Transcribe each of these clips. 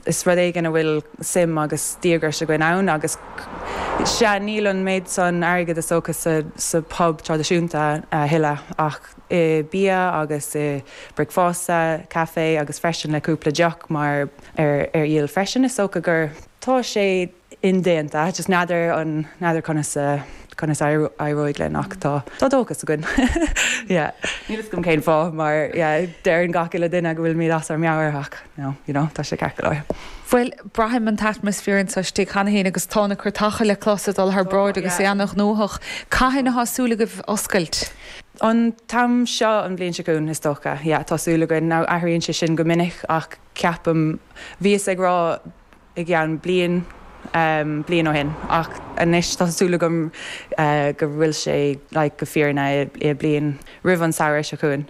Is rud éigin a bhfuil suim agus díograis againn ann agus, sea, níl an méid san airgid is dócha sa bpub traidisiúnta a thuilleadh ach i bia agus i mbricfeasta caife agus freisin le cúpla deoch maraon leis freisin, is dócha gur. Tá sé indéanta, just n'fheadar, n'fheadar conas a, conas a éireoidh linn ach tá, tá dóchas againn. Yeah. Níl 'fhios agam cén fáth mar, yeah, deireann gach uile duine go bhfuilimid as ár meabhair ach no, you know, tá sé ceart go leor. Bhuel, braithim an t-atmaisféar anso istigh cheana féin agus tá na trucanna le clos ag dul thar bráid agus é an-ghnóthach. Cathain atá súil agaibh oscailt? An t-am seo an bhliain seo chugainn is dócha. Yeah, tá súil againn. Now, athraíonn sé sin go minic ach ceapaim, bhíos ag rá, i gceann bliain, bliain ó shin ach anois tá súil agam go bhfuil sé like go fírinneach bliain roimh an samhradh seo chugainn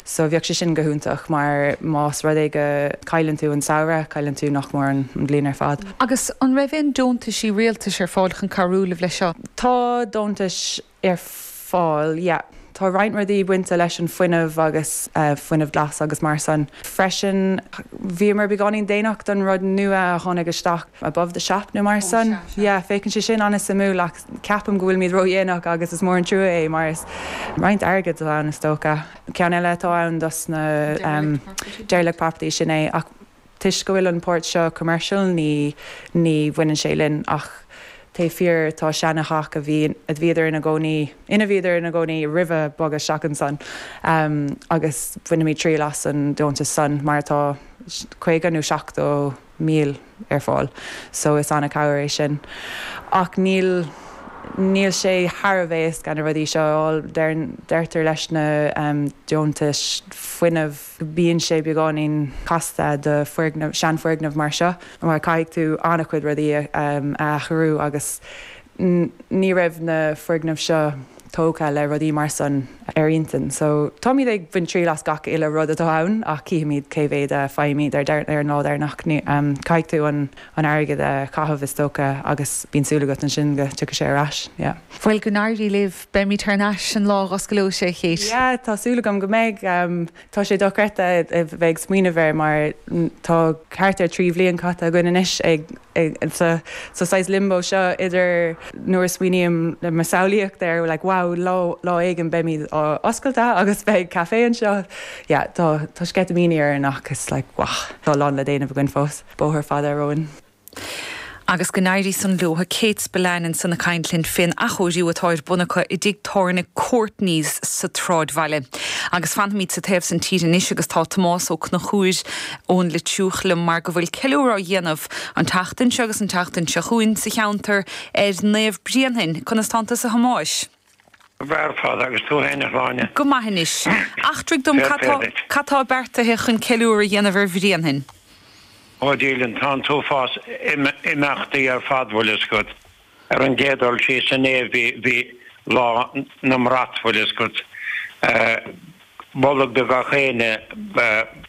so bheadh sé sin go hiontach mar más rud é go cailleann tú an samhradh cailleann tú nach mór an bhliain ar fad. Agus an raibh aon deontaisí rialtais ar fáil chun cabhrú libh leis seo? Tá deontais ar fáil. Tá roinnt rudaí bainte leis an fuinneamh agus fuinneamh glas agus mar san freisin. Bhíomar beagáinín déanach don rud nua a tháinig isteach, above the shop nó mar san. Féachann sé sin an-suimiúil ach ceapaim go bhfuilimid ródhéanach agus is mór an trua é mar is roinnt airgead atá ann is dócha. Ceann eile atá ann dos na derelict properties, sin é. Toisc go bhfuil an pháirt seo commercial ní ní bhaineann sé linn ach b'fhéidir tá seana-theach a bhí a bhíodar ina gcónaí ina mbíodar ina gcónaí roimhe bogadh isteach ansan agus bainfimid triail as an deontas san mar tá caoga nó seachtó míle ar fáil so is an-cabhair é sin ach níl níl sé thar a bheith éasca na rudaí seo a fháil deirtear leis na deontais fuinnimh Bíonn sé beagáinín casta do foirgneamh, seanfhoirgneamh mar seo mar caithfidh tú an-chuid rudaí a athrú agus ní raibh na foirgnimh seo tógtha le rudaí mar san ar intinn. So táimid ag baint triail as gach uile rud atá ann ach cífimid cé mhéad a fhaighimid ar an lá deireanach. Caithfidh tú an airgead a chaitheamh is dócha agus bíonn súil agat ansin go tiocfaidh sé ar ais. Yeah. Bhuel go n-éirí libh. Beimid thar n-ais an lá a osclóidh sibh. Yeah, tá súil agam go mbeidh. Tá sé dochreidte a bheith ag smaoineamh air mar tá thart ar trí bhliain caite againn anois sa saghas limbo seo idir nuair a smaoiním i mo shamhlaíocht air, like wow lá éigin beimid oscailte agus beidh café anseo. Yeah, tá sceitimíní orainn ach is like wow tá a lán le déanamh againn fós, bóthar fada romhainn. Agus go n-éirí san leo, a Kate Spillane, ansan ag caint linn fén athchóiriú atá ar bun acu i dtigh tábhairne Courtney's sa tSráidbhaile. Agus fanfaimid sa taobh san tíre anois agus tá Tomás Ó Conchúir ón Leitriúch liom mar go bhfuil ceiliúradh á dhéanamh an tseachtain seo agus an tseachtain seo chugainn sa cheantar ar Naomh Bréanainn. Conas tánn tusa a Thomáis? Breá ar fad agus tú fhéin a Shláine. Go maith anois. Eachtraigh dom cad tá, cad tá beartaithe chun ceiliúradh a dhéanamh ar Bhréanainn? Ó Dia linn, tá an t-uafás imeachtaí ar fad bhfuil a fhios agat. Ar an gcéad dul síos inné bhí Lá na mBrat bhfuil a fhios agat. Bolg do gach éinne